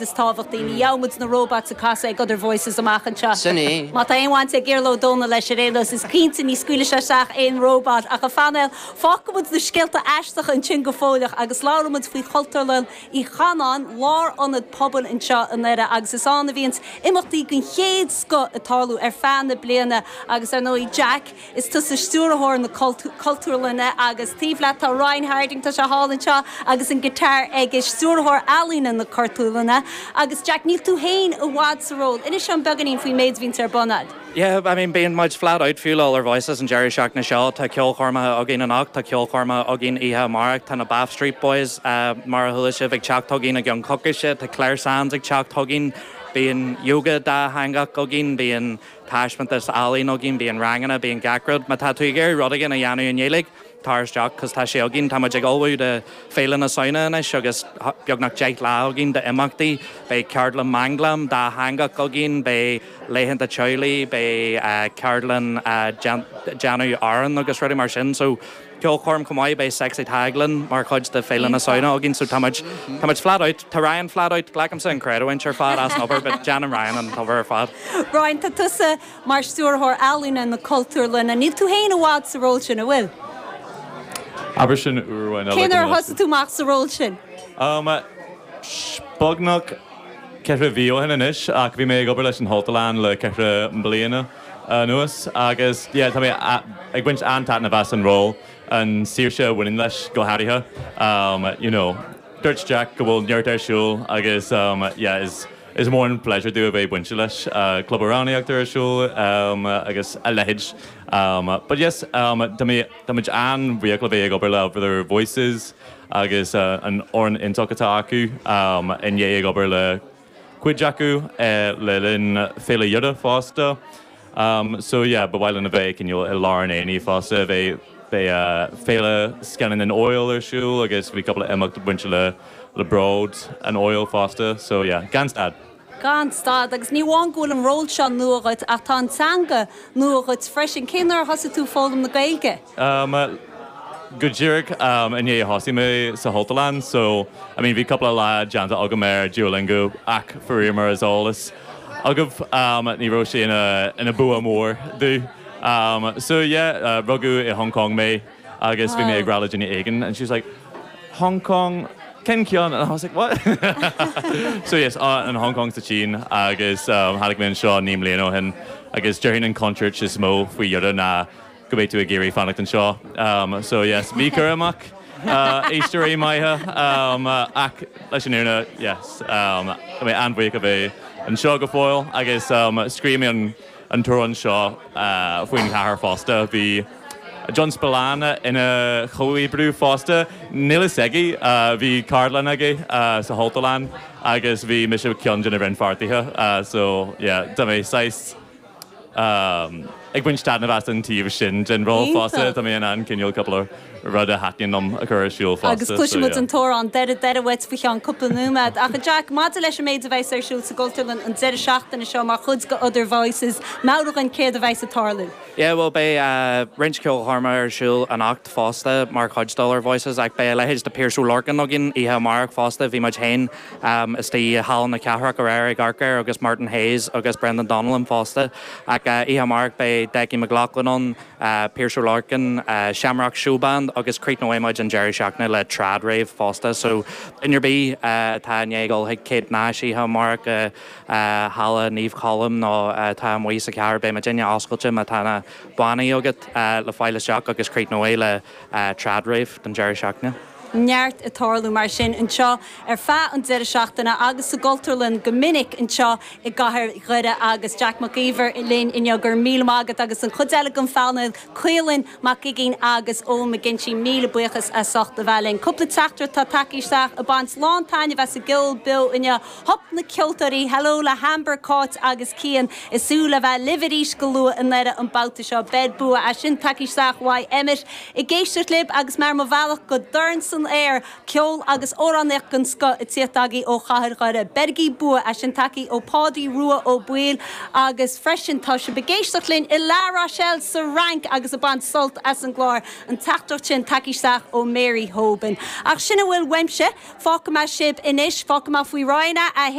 is tábhachtaí. Ní gheobhaimid na róbats ag casadh ag Other Voices amach anseo. Sin é. Má tá aon bhaint ag Iarla Ó Dónaill leis, ar aon nós, is cinnte ní scaoilfidh sé isteach aon róbat ach a phainéal. Fágfaimid na scéalta aisteacha ansin go fóilleach agus labhróimid faoi Chultúrlann Uí Chanáin, lárionad pobail anseo i nDoire agus is ann a bhíonns imeachtaí den chéad scoth ag tarlú ar feadh na bliana agus, ar ndóigh, Jack, Is tusa stiúrthóir na Cultúrlainne agus taobh leat tá Ryan Harding, tá sé thall anseo agus an guitar aige, stiúrthóir ealaíne na Cultúrlainne. Agus Jack, níl tú féin i bhfad sa ról. Inis dom beagáinín faoin méid a bhíonns ar bun a'd. Yeah, I mean bíonn muid flat out fiú le Other Voices an deireadh seachtaine seo, tá ceolchoirmeacha againn anocht, tá ceolchoirmeacha againn oíche amárach, tá na Bath Street Boys mar a chuala sibh ag teacht chugainn i gceann coicíse, tá Clare Sands ag teacht chugainn, bíonn yoga dátheangach againn, bíonn taispeántas ealaíon againn, bíonn ranganna, bíonn gach rud. Má tá tú ag iarraidh rud éigin a dhéanamh i nGaeilge, tar isteach, cos tá sé againn. Tá muid ag ullmhú do Féile na Samhna anois agus beagnach deich lá againn d'imeachtaí. Beidh ceardlann manglam dátheangach againn, beidh laethanta teaghlaigh, beidh ceardlann déanamh arán agus rudaí mar sin. So. ceolchoirm chomh maith, beidh Sexy Tadhg linn mar chuid de Féile na Samhna againn so táimid, táimid flat out, tá Ryan flat out, glacaimse an chreidiúint ar fad as an obair but déanann Ryan an obair ar fad. Ryan, tá tusa mar Stiúrthóir Ealaíne na Cultúrlainne, níl tú féin i bhfad sa ról sin, an bhfuil? Abair sin uair amháin eile. Cén uair a thosaigh tú amach sa ról sin? Um, sh, beagnach ceithre mhí ó shin anois ach bhí mé ag obair leis an Chultúrlann le ceithre bliana. anuas agus yeah tá mé ag baint an-taitneamh as an ról, an saoirse a bhaineann leis go háirithe. You know dúirt Jack go bhfuil neart ar siúl agus yeah is is mór an pleasure dúinn a bheith bainte leis. Club Amhránaíochta ar siúl agus a leithéid. But yes tá mé táimid an-bhuíoch le bheith ag obair le Other Voices agus an fhoireann iontach atá acu. I ndiaidh ag obair le cuid acu le linn Féile Dhoire fosta so yeah ba mhaith linn a bheith cineál i lár an aonaigh fosta beidh Féile Scannán an Fheabhail ar siúl agus bhí cúpla imeacht bainte le le Bród an Fheabhail fosta so yeah gan stad. gan stad agus ní amháin go bhfuil an ról seo nua dhuit ach tá an teanga nua dhuit freisin, cén uair a thosaigh tú ag foghlaim na Gaeilge? Am, go díreach am i ndiaidh a thosaigh mé sa Chultúrlann so I mean bhí cúpla lá déanta agam ar Duolingo ach faraor mar is eolas agaibh am ní raibh sé ina ina bua mór domh am so yeah rugadh i Hong Kong mé agus bhí mé ag rá le duine éigin and she was like Hong Kong cén ceann and I was like what? So yes an Hong Kong sa tSín agus tháinig mé anseo naoi mbliana ó shin agus déarfainn an contúirt is mó faoi Dhoire ná go mbeidh tú ag iarraidh fanacht anseo. So yes, bí cúramach, éisteoirí maithe, ach leis an fhírinne, yes, tá mé an-bhuíoch a bheith anseo go fóill agus scríobh mé an t-amhrán seo faoin chathair fosta. Bhí John Spillane ina chomhoibrí fosta, níl fhios aige, bhí ceardlann aige sa Chultúrlann agus bhí mise ceann de na rannpháirtithe, so yeah, tá mé saghas. ag baint taitneamh as an taobh sin den ról fosta. Tá mé in ann cineál cúpla rud a thaitníonn liom a chur ar siúl fosta. Agus cloisfidh muid an t-amhrán deiridh deiridh uait faoi cheann cúpla nóiméad. Ach, a Jack, maidir leis an méid a bheas ar siúl sa gCultúrlann an deireadh seachtaine seo mar chuid de Other Voices, meabhraigh dhúinn céard a bheas ag tarlú. Yeah, bhuel, beidh roinnt ceolchoirme ar siúl anocht fosta mar chuid d'Other Voices, ach beidh a leithéid de Piaras Ó Lorcáin againn oíche amárach fosta. Bhí muid féin istigh i Halla na Cathrach aréir ag amharc air agus Martin Hayes agus Brendan Donnellan fosta. Ach oíche amárach beidh Decky McLaughlin ann, Piaras Ó Lorcáin, Shamrock Showband agus críochnóidh muid an deireadh seachtaine le Trad Rave fosta. So duine ar bith atá i ndiaidh dul chuig Kate Nash oíche amárach i Halla Naomh Colm nó atá amuigh sa chathair beidh muidinne oscailte má tá na bannaí agat le fáil isteach agus críochnóidh le Trad Rave don deireadh seachtaine. neart ag tarlú mar sin anseo ar feadh an deireadh seachtaine agus sa gCultúrlann go minic anseo i gcathair Dhoire agus Jack Mac Íomhair linn inniu. Go raibh míle maith agat agus an chuid eile den phainéal, Caolán Mac Uiginn agus Eoin McGinty, míle buíochas as ucht a bheith linn. Cúpla teachtaireacht atá tagtha isteach ag baint lán taitneamh as an gceol beo inniu. Hup na ceoltóirí! Hello le hAmber, Cáit agus Cian. Ag súil le bheith libh arís go luath i nDoire an babhta seo. Beir bua. É sin tagtha isteach uaidh Emmet ag éisteacht libh agus mé ar mo bhealach go Dorn San Aer! Ceol agus amhránaíocht den scoth ag tíocht agaibh ó Chathair Dhoire. Beirigí bua. É sin tagtha ó Pádaí Rua Ó Baoill agus freisin tá siad ag éisteacht linn i La Rochelle sa Fhrainc agus ag baint sult as an gclár. an teachtaireacht sin tagtha isteach ó Mary Hoban. Ach sin a bhfuil uaimse. Fágfaidh mé sibh anois. Fágfaidh mé faoi Roinn a 1.